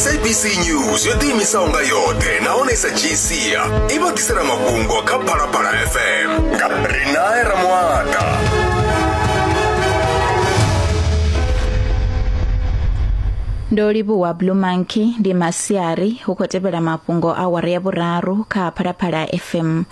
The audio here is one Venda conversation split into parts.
sabc news yo ḓiimisaho nga yoṱhe nahone sa gcia i vha ḓisela mafhungo kha phalaphala fm nga rinae ramwata ndo livhuwa blue monkey ndi masiari hu khou tevhela mafhungo a wara ya vhuraru kha phalaphala fm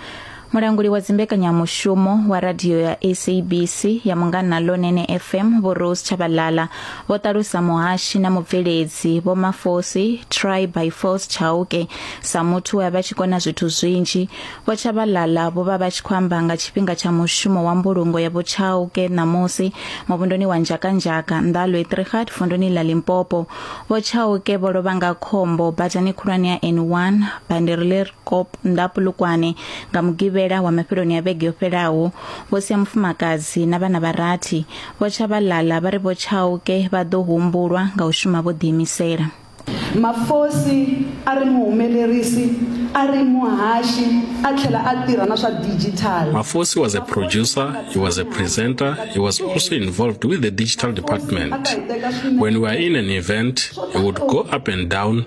mulanguli wa dzimbekanyamushumo wa radio ya sabc ya mungana lonene fm vho rose tshabalala vho ṱalusa muhashi na mubveledzi vho mafosi try by force chauke sa muthu we a vha tshi kona zwithu zwinzhi vho tshabalala vho vha vha tshi khou amba nga tshifhinga tsha mushumo wa mbulungo ya vho chauke ṋamusi muvhundoni wa nzhakanzhaka nḓalo etrihat vundoni ḽa limpopo vho chauke vho lovha nga khombo badani khulwane ya n1 bandiri ḽi Kop nda Polokwane nga Mugivhela wa mafheloni a vhege yo fhelaho vho sia mufumakadzi na vhana vha rathi vho tsha vha lala vha ri vho Chauke vha ḓo humbulwa nga u shuma vho ḓiimisela. Mafosi a ri muhumelerisi, a ri muhaxi a tlhela a tirha na swa digital. Mafosi was a producer, he was a presenter, he was also involved with the digital department. When we are in an event, he would go up and down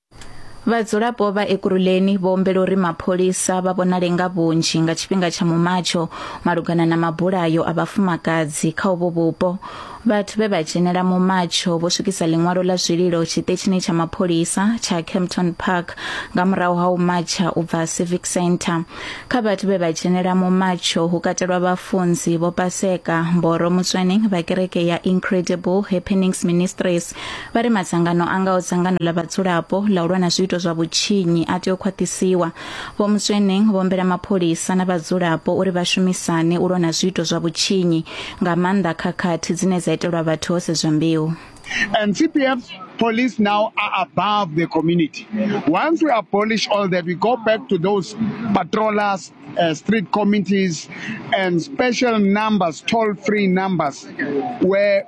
Vhadzulapo vha Ekurhuleni vho humbela uri mapholisa vha vhonale nga vhunzhi nga tshifhinga tsha mumatsho malugana na mabulayo a vhafumakadzi kha uvho vhupo. Vhathu vhe vha dzhenela mumatsho vho swikisa ḽiṅwalo ḽa zwililo tshiṱetshini tsha mapholisa tsha Kempton Park nga murahu ha u matsha u bva Civic Centre. Kha vhathu vhe vha dzhenela mumatsho hu katelwa vhafunzi vho Paseka Mboro Mutswening vha kereke ya Incredible Happenings Ministries vha ri madzangano a ngaho dzangano ḽa vhadzulapo ḽa u lwa na zwiito zwa vhutshinyi a tea u khwaṱhisiwa vho musweneng vho humbela mapholisa na vhadzulapo uri vha shumisane u lwa na zwiito zwa vhutshinyi nga maanḓa khakhathi dzine dza itelwa vhathu ho sedzwa mbeu And CPF's police now are above the community. Once we abolish all that, we go back to those patrollers, uh, street committees, and special numbers, toll free numbers, where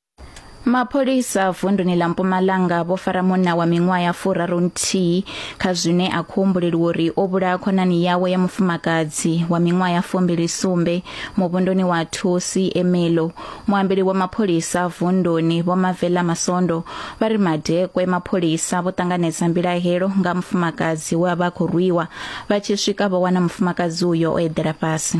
Mapholisa vunduni ḽa Mpumalanga vho fara munna wa miṅwaha ya furaru nthihi kha zwine a khou humbuleliwa uri o vhulaha khonani yawe ya mufumakadzi wa miṅwaha ya fumbili sumbe muvhunduni wa Thusi Emelo. Muambeli wa mapholisa vunduni vho Mavela Masondo vha ri madekwe mapholisa vho ṱanganedza mbilahelo nga mufumakadzi we a vha khou rwiwa vha tshi swika vho wana mufumakadzi uyo o eḓela fhasi.